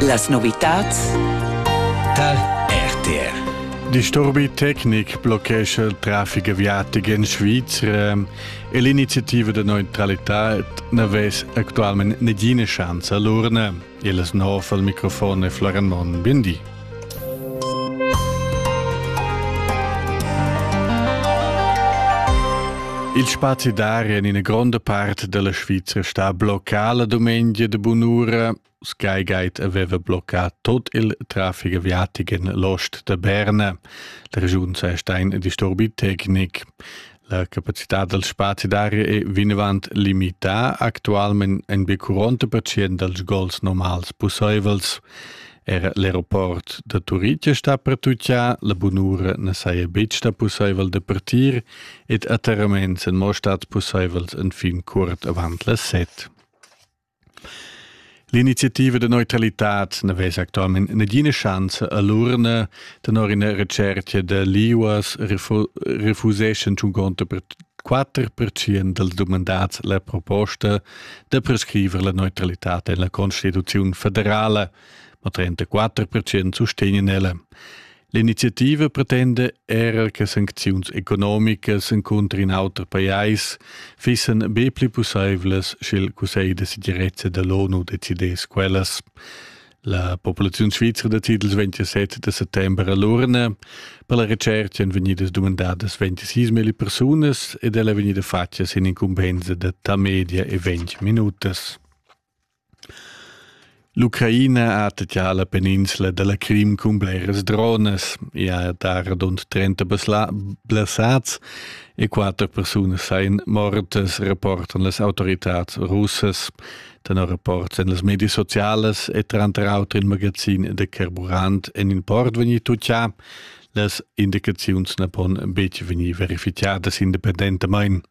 Las novitads dal RTR Disturbi tecnic bloccescha il traffic aviatic en Svizra e l'iniziativa da neutralità n'avess actualmente nagina chance a l'urna. Il snov al microfon è Florian Monn. Bien di. Il spazi d'aria en ina gronda part della Svizra sta bloccada domenica de bunura. Sky Guide aveva bloccat tot il traffic aviatic en l'ost de Berna. La regiun sa sta in disturbi tecnic. La capacità dal spazi d'aria è vinavant limità actualmain en be 40 percent dals gols normals pussaivels. Era l'aeroport da Turitg sta pertutgà, la bunura na saja betg stà pussaivel da partir ed atterraments èn mo stads pussaivels enfin curt avant las set. L'iniziativa da neutralitad na vesa actualmain nagina schanza a l'urna. Tenor ina retschertga da l'IUAS refuseschan 54% dals dumandads la proposta da prescriver la neutralitad en la Constituziun federala, ma 34% sustegnan ella. L'iniziativa pretenda era che sancziuns economicas encunter in auter pajais fissan be pli pussaivlas, sch'il Cussegl da segirezza da l'ONU decidess quellas. La populaziun svizra da titels 27 da settembre a l'urna per la recerca èn vegnidas dumandadas 26.000 persunas ed ella è vegnida fatga sin incumbensa da ta media e 20 minutas. L'Ucraina ha attacchà la peninsla da la Crim cun bleras dronas. I ha dà radund trenta blessads e quatter persunas sain mortas, rapportan las autoritads russas. Tenor rapports en las medias socialas e tranter auter in magazin da carburant en il port vegnì tutgà. Las indicaziuns na pon betg vegnir verificadas independentamain.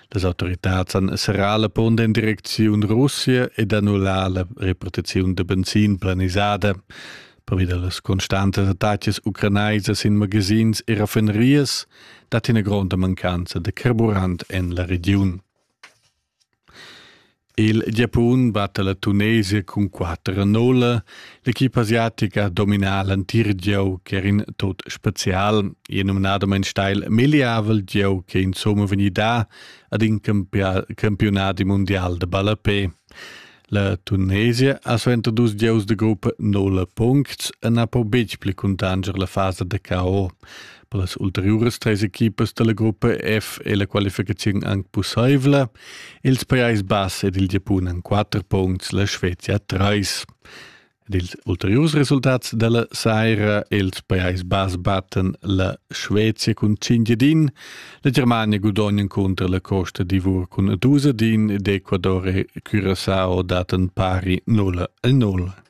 Las autoritads han serrà la punt en direcziun Russia ed annullà la repartiziun da benzin planisada. Pervi da las constantas attacas ucranaisas in magazins e raffinerias dat ina gronda mancanza da carburant en la regiun. Il Giapun batta la Tunesia cun quatter a nolla. L'equipa asiatica domina l'entir gieu ch'er in tot spezial. E numnadamain steil megliavel gieu che insomma vegnida ad in campionat mundial de ballapé. La Tunesia ha suenter dus gieus de gruppa nolla puncts e na po betg pli cuntanger la fasa de KO. Per las ulteriuras treis equipas dalla gruppa F è la qualificaziun anc pussaivla. Ils Pajais Bass ed il Giapun han quatter punts, la Svezia treis. Ed ils ulteriurs resultats della saira ils Pajais Bas batten la Svezia cun 5 din, la Germania gudognan contro la Costa d'Ivor cun 2 din ed Ecuador e Curaçao daten pari 0 0.